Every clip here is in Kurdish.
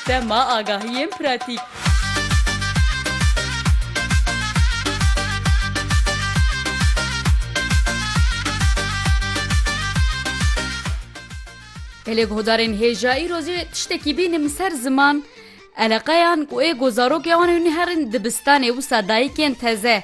Sema agahiyên pratîk. Gelê guhdarên hêja îro jî tiştekî bîne min ser ziman eleqeyan ku ê ku zarokê wan ê hûn ê herin dibistanê wisa dayikên teze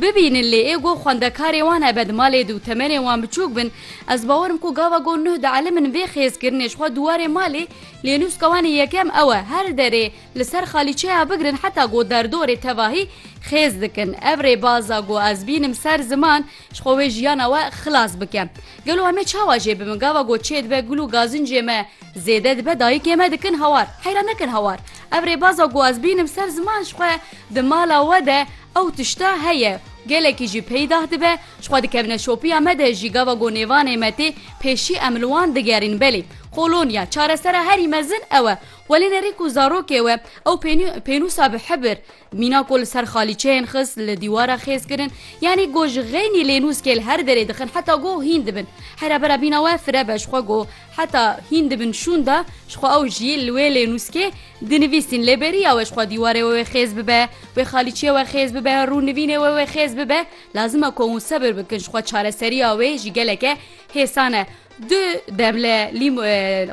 Bibînin lê ê go xwendekarê wan hebe di malê de û temenê wan biçûk bin, ez bawer im ku gava go nuh dielimin vê xêzkirinê ji xwe dûwarê malê lê nûska wan ê yekem ew e her derê li ser xalîçeya bigirin heta go derdorê tevahî xêz dikin. Ev rêbaza go ez bînim ser ziman ji xwe wê jiyana we xilas bike. Gelo em ê çawa jê bibin gava go çê dibe gul û gazincê me zêde dibe dayikê me dikin hawar. Heyran nekin hawar ev rêbaza go ez bînim ser ziman ji xwe Di mala we de ew tişta heye û gelekî jî peydah dibe, ji xwe dikevine şopiya me de jî gava ku nêvanê me tê pêşî em li wan digerîn belê kolonya çaresera herî mezin ew e welê nerî ku zarokê we ew pênî pênûsa bi hibir mîna ku li ser xalîçeyên xist li dîwara xêz kirin yanî ku ji xeynî lênûskê li her derê dixin heta ku hîn dibin hera bera bîna we fire be ji xwe ku heta hîn dibin şûnda ji xwe ew jî li wê lênûskê Di nivîsîn lê beriya we ji xwe dîwarê we wê xêz bibe, wê xalîçiyê we xêz bibe, rûnivînê we wê xêz bibe, lazim e ku hûn sebir bikin ji xwe çareseriya wê jî geleke hêsan e. Du demle lîm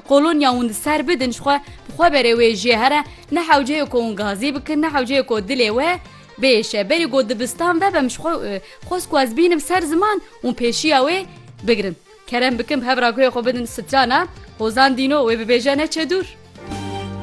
qolonya hûn di ser bidin ji xwe bi xwe berê wê jê here ne hewceyê ku hûn gazî bikin ne hewceyê ku dilê we bêşe. Berî ku dibistan vebem ji xwe xwest ku ez bînim ser ziman hûn pêşiya wê bigirin. Kerem bikin bi hev ragoyê xwe bidin strana hozan dîno wê bibêje neçe dûr.